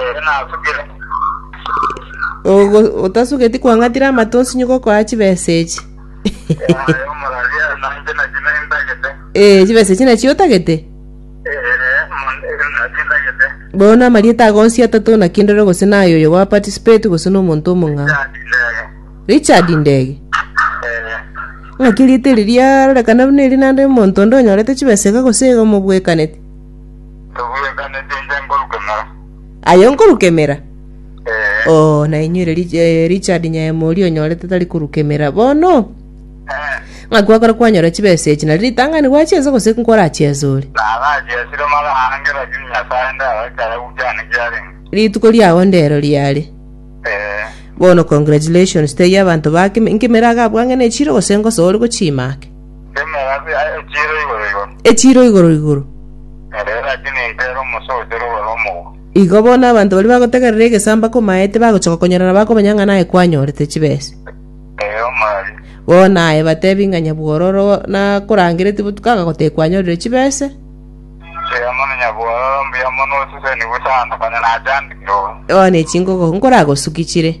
Ee, nasugire. Ogo- otasugeti kwang'atire amato osinyuke okoa chibesa echi Yaye omorwaria nanje naki nendagete. Eh, chibesa echi nachio otagete Eh, mon- naki ndagete. bono amarieta ago onsi atato naki ndore gose naye oyo gwa participate gose na omonto omong'ao Yandi ndege. richard ndege Eh, ng'aki riete riria rorekana buna eri nande omonto onde onyorete chibesa iga gose iga omobwekaneti Tobwekaneti inche nkorukemera. Aye nkorukemera? Eh, Oo, nainywe ere Rich- eh, Richard Nyaemori onyorete tari korukemera bono? eh, Ng'a kwakora kwanyora chibesa echi, nari ritang'ani gwachiensa gose nkorachiensa ore? narachiesire mara ange lakini Nyasae ndarachaya gukiane kiarenge. Rituko riago ndero riare. Eh, Bono congratulations, teiyo abanto bake, nkemera agabwange nechiro gose ngosa ore gochima ake. Emerabe aye echiire igoro igoro. Echiiro igoro igoro. Ere lakini intere omosa oyochire ogoro omogoko. Igo bono abanto baria bagotegerera egesamba komaete bagochoka konyora na bakomanya ng'a naye kwanyorete chibesa. Ee, omorari. Bono aye batebi ng'a nyabwororo nakorangereti botuko agagotebia kwanyorire chibesa. Ee, mono nyabwororo, mbuya mono osesenigwe sana, konya nachandikire oo. Oone chingogo nkoragosuki chire.